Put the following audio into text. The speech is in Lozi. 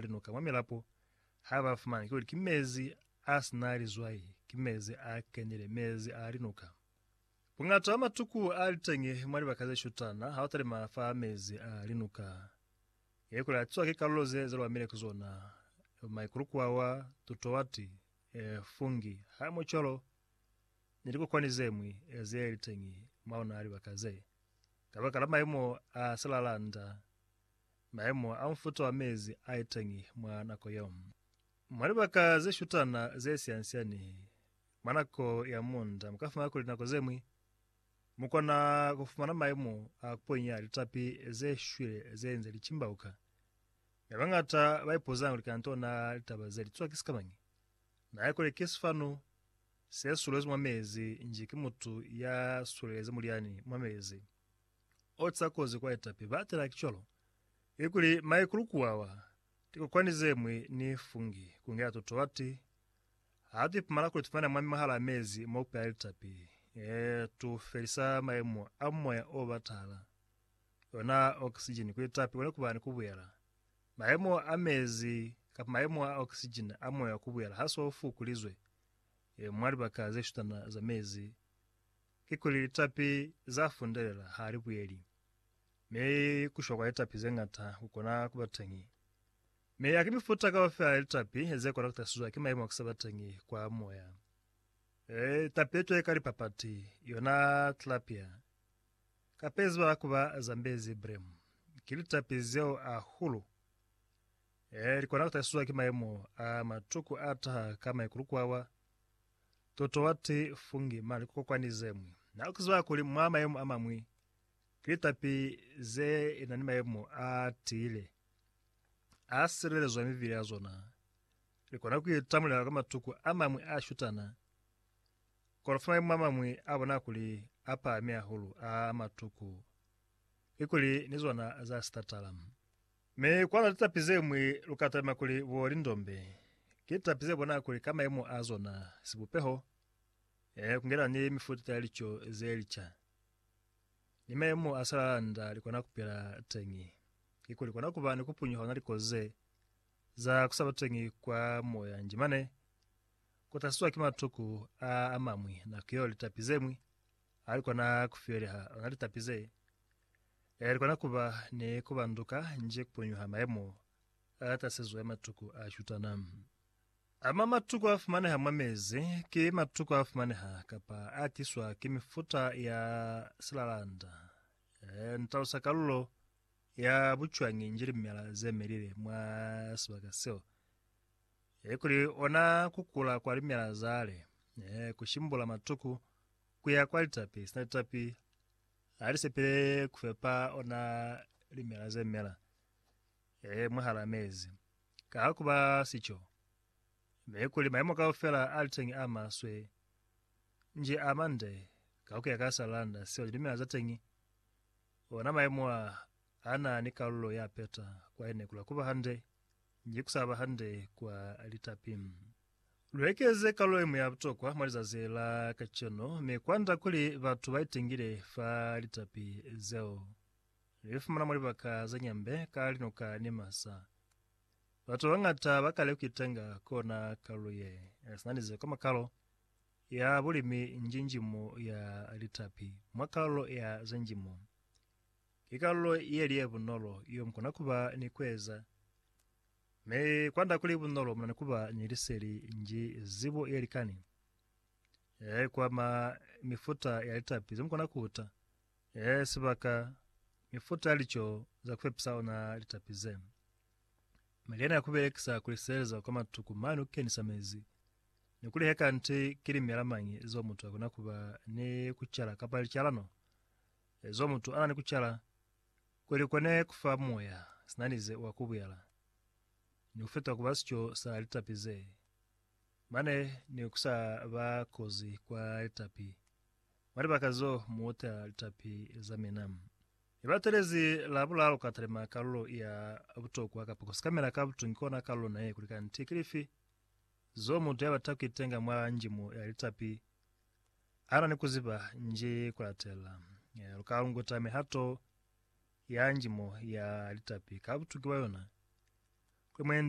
linuka mwa milapo ha ba fumana kuli ki mezi a si na lizwai, ki mezi a kenile, mezi a linuka. Buñata bwa matuku a li teñi mwa libaka ze shutana ha u talima fa mezi a linuka. Ye kule a tiwa ki kalulo ze ze lwamile ki zona, maikulukwawa, tutuwati, fungi, hamocholo, ni likokwani ze ñwi ze li teñi mwa ona libaka ze, kabakala maimo a silalanda. maemo a mufuta wa mezi a iteñi mwa nako yeo. Mwa libaka ze shutana ze siansiani mwa nako ya munda mu ka fumana kuli nako ze ñwi mu kona ku fumana maemo a kuponya litapi ze shwile ze nze li cimbauka. Mi bañata ba ipuza kuli kanto na litaba ze li twa ki sikamañi? Na ye kuli ki sifanu se sulezi mwa mezi nji ki mutu ya sulezi mulyani mwa mezi. oca kozi kwa etapi ba tela ki cwalo, i kuli maikulu kuwawa, tikokwani zemwi ni fungi kungela to toati ha tu ipumala kuli tufumana mwami mwahala mezi mo pela litapi, ee, tu felisa maimo a moya o batahala, yona oxygen ku litapi kone kuba ni kubuyela. Maimo a mezi kapa maimo a oxygen a moya kubuyela ha so fukulizwe e, mwa libaka ze shutana za mezi, kikuli litapi za fundelela ha li buyeli, mi ku shwa kwa litapi ze ñata ku kona ku ba teñi. Mi ha ki mifuta kaufela ya litapi ze kona ku tahlisizwa ki mayemo a ku se ba teñi kwa moya. Litapi le cwale ka lipapati, yona tilapia, kapa ye ziba ku ba Zambezi bream, ki litapi zeo ahulu. Li kona ku tahlisizwa ki mayemo a matuku a taha ka maikulukuawa. Totoati fungi mane kokwani zemwi. Na ukizwa kuli mwa mayemo amamwi ki litapi ze na ni mayemo a tiile, a silelezwa mivili ya zona. Li kona ku itamulela kwa matuku amamwi a shutana, kono fa mayemo amamwi a bona kuli a pahami hahulu a matuku ki kuli ni zona za sitatala. Mi kwa na litapi zeñwi lu ka talima kuli bo lindombe, ki litapi ze bona kuli ka mayemo a zona, sibupeho, ee, ku ngelana ni mifuta ya lico ze lica, ni mayemo a salala nda li kona ku pila teñi, kikuli kona ku ba ni ku punyuha ona likozi ze za ku sa ba teñi kwa moya nji mane, ku tahliswa ki matuku a a mañwi, nako yeo litapi zeñwi ha li kona ku fiyeleha, ona litapi ze Ee, likona kuba ni kubanduka nji kupunyuha mayemo atasizwe a matuku a shutana. Ama matuku afumaneha mwa mezi ki matuku afumaneha kapa atiswa ki mifuta ya silalanda. Ee, ni talusa kalulo ya bucwañi nji limela zemelile mwa sibaka seo. Ee, kuli ona kukula kwa limela zale, ee, kushimbula matuku kuya kwa litapi sina litapi, Ha li sepile ku fepa ona limela ze mela ee mwahal'a mezi. Ka ha ku ba sico, mi kuli mayemo kaufela a li teñi a maswe, nji a mande ka ku ya ka sa landa seo lilimela za teñi, ona mayemo a a na ni kalulo ya peta kwa ene kula ku ba hande nji ku sa ba hande kwa litapi. Lu ekeze kalulo iñwi ya butokwa mwa lizazi la kacenu mi kwanda kuli batu ba itengile fa litapi zeo. Lu li fumana mwa libaka ze nyambe ka linuka ni masa. Batu ba bañata ba kale ku itenga ku ona kalulo ye sina lize kwa makalo ya bulimi njinjimu ya litapi mwa kalulo ya ze njimo. Ki kalulo ye li ye bunolo yo mu kona ku ba ni ku eza. Mi kwanda kuli bunolo muna ni kuba ni liseli nji zibo ye likani e kwama mifuta ya litapi ze mukona kuta, e sibaka, mifuta ya lico za kupepisa ona litapi ze. Mi lyena ya kubelekisa kuli sizeleza kwa matuku mane kukenisa mezi, ni kuli he kanti ki limela mañi zo mutu akona kuba ni kucala kapa licalano zo mutu ana ni kucala, Kuli kone kufa Moya sinanize wa kubuyala, ni kufita kuba sico sa litapi ze, mane ni kusa ba kozi kwa litapi, mwa libaka zo muuta litapi za mina. Ni batelezi la bulalu ka talima kalulo ya butokwa kapa kusikamela ka butungi kona kalulo naye kuli kanti kilifi zo mutu yabata kuitenga mwa njimo ya litapi, Ana ni kuziba nji kulatela. Lukalunguta mihato ya njimo ya litapi ka butuki bwa yona. Kuli mwendi.